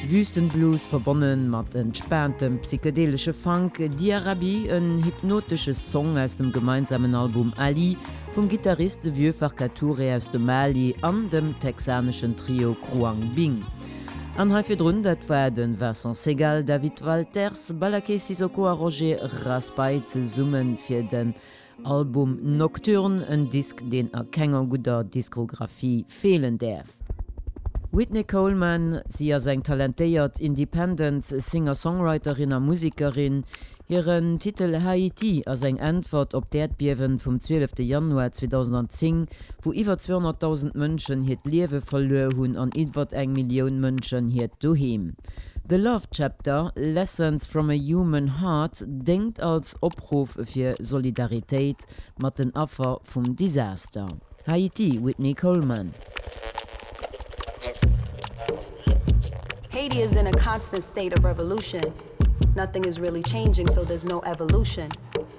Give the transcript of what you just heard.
Wüstenblues verbonnen mat entspaantem psychedelesche Funk, Diarabi, en hypnotesche Song aus dem gemeinsamen Album Ali vum Gittarist de Vieux Farka Touré aus dem Mali an dem texaneschen Trio Khruangbin. An hei virdrun, dat war de Vincent Segal, David Walters, Ballaké Sissoko a Roger Raspail zesumme fir de. Album Nocturne, en Disk deen a kenger gudder Diskografie feelen däerf. D'Whitney Coleman, si ass eng talentéiert Independent Singer-Songwriterin a Musekerin. Hiren Titel Haiti ass eng Äntwert op d'Äerdbiewen vum 12 Januar 2010, wou iwwer 200.000 Mënschen hiert Liewe verluer hunn an iwwert eng Millioun Mënschen hiert Doheem. The Love Chapter, Lessons from a Human Heart déngt als Opruff fir Solidaritéit mat den Affer vum Disaster Haiti, Whitney Coleman. Haiti is in a constant state of revolution, nothing is really changing so there's no evolution.